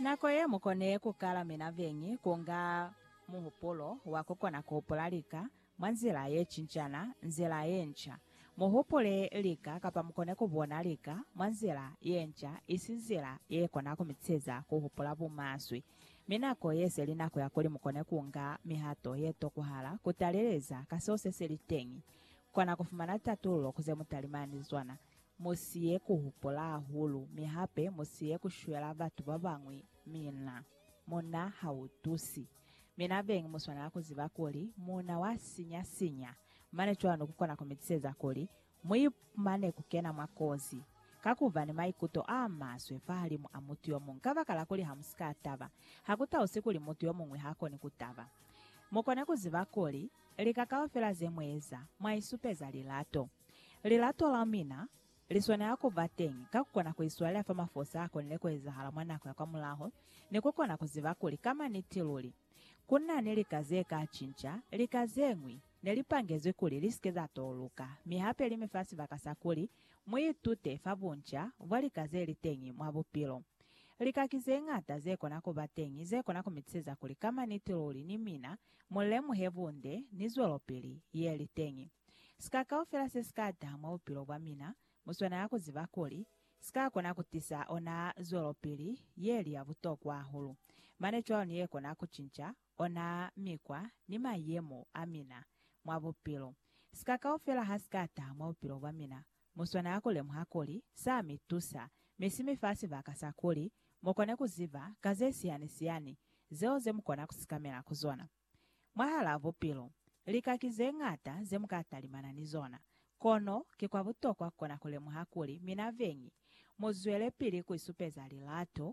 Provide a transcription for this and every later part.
Nako ye mu kone ku kala mina beñi ku nga muhupulo wa ku kona ku hupula lika mwa nzila ye cincana, nzila ye nca. Mu hupule lika kapa mu kone ku bona lika mwa nzila ye nca, isi nzila ye kona ku mi teza ku hupula bumaswe. Mi nako ye se li nako ya kuli mu kone ku nga mihato ye tokuhala ku taleleza ka seo se si li teñi. Kona ku fumana tatululo ku ze mu talimani zona. Musiye ku hupula hahulu, mi hape musiye ku shwela batu ba bañwi mina. Muuna ha u tusi. Mina beñi mu swanela ku ziba kuli muuna wa sinya sinya, mane cwalo ku kona ku mi tiseza kuli mu ipumane ku kena mwa kozi ka ku ba ni maikuto a maswe fahalimu a mutu yo muñwi. Kabakala kuli ha mu si ka taba, ha ku tausi kuli mutu yo muñwi ha koni ku taba. Mu kone ku ziba kuli lika kaufela ze mu eza, mwa isupeza lilato. Lilato la mina li swanela ku ba teñi ka ku kona ku iswalela fa mafosi a konile ku ezahala mwa nako ya kwamulaho, ni ku kona ku ziba kuli ka maniti luli ku na ni lika ze ka cinca. Lika ze ñwi ne li pangezwi kuli li si ke za touluka, mi hape li mi fa sibaka sa kuli mu itute fa bunca bwa lika ze li teñi mwa bupilo. Lika ki ze ñata ze kona ku ba teñi ze kona ku mi tiseza kuli ka maniti luli ni mina mu lemuhe bunde ni zwelopili ye li teñi. Sika kaufela se si ka taha mwa bupilo bwa mina, mu swanela ku ziba kuli, si ka kona ku tisa ona zwelopili ye li ya butokwa hahulu. Mane cwalo ni ye kona ku cinca ona mikwa ni mayemo a mina mwa bupilo. Sika kaufela ha si ka taha mwa bupilo bwa mina, mu swanela ku lemuha kuli sa mi tusa, mi si mi fa sibaka sa kuli mu kone ku ziba ka ze sihani-sihani zeo ze mu kona ku sikamela ku zona. Mwahalaa bupilo, lika ki ze ñata ze mu ka talimana ni zona. Kono ki kwa butokwa ku kona ku lemuha kuli mina beñi, mu zwelepili ku isupeza lilato,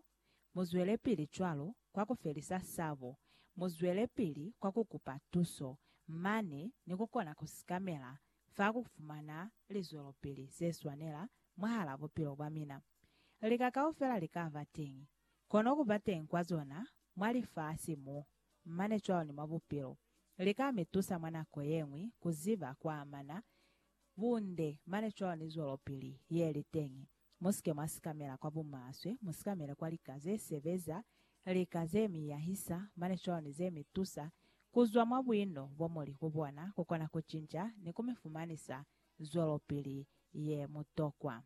mu zwelepili cwalo kwa ku felisa sabo, mu zwelepili kwa ku kupa tuso, mane ni ku kona ku sikamela fa ku fumana lizwelopili ze swanela mwahalaa bupilo bwa mina. Lika kaufela li ka ba teñi, kono ku ba teñi kwa zona mwa lifasi mu, mane cwalo ni mwa bupilo, li ka mi tusa mwa nako ye ñwi ku ziba ku amana bunde mane cwalo ni zwelopili ye li teñi. Mu si ke mwa sikamela kwa bumaswe, mu sikamele kwa lika ze sebeza, lika ze mi yahisa mane cwalo ni ze mi tusa ku zwa mwa buino bo mu li ku bona ku kona ku cinca ni ku mi fumanisa zwelopili ye mutokwa.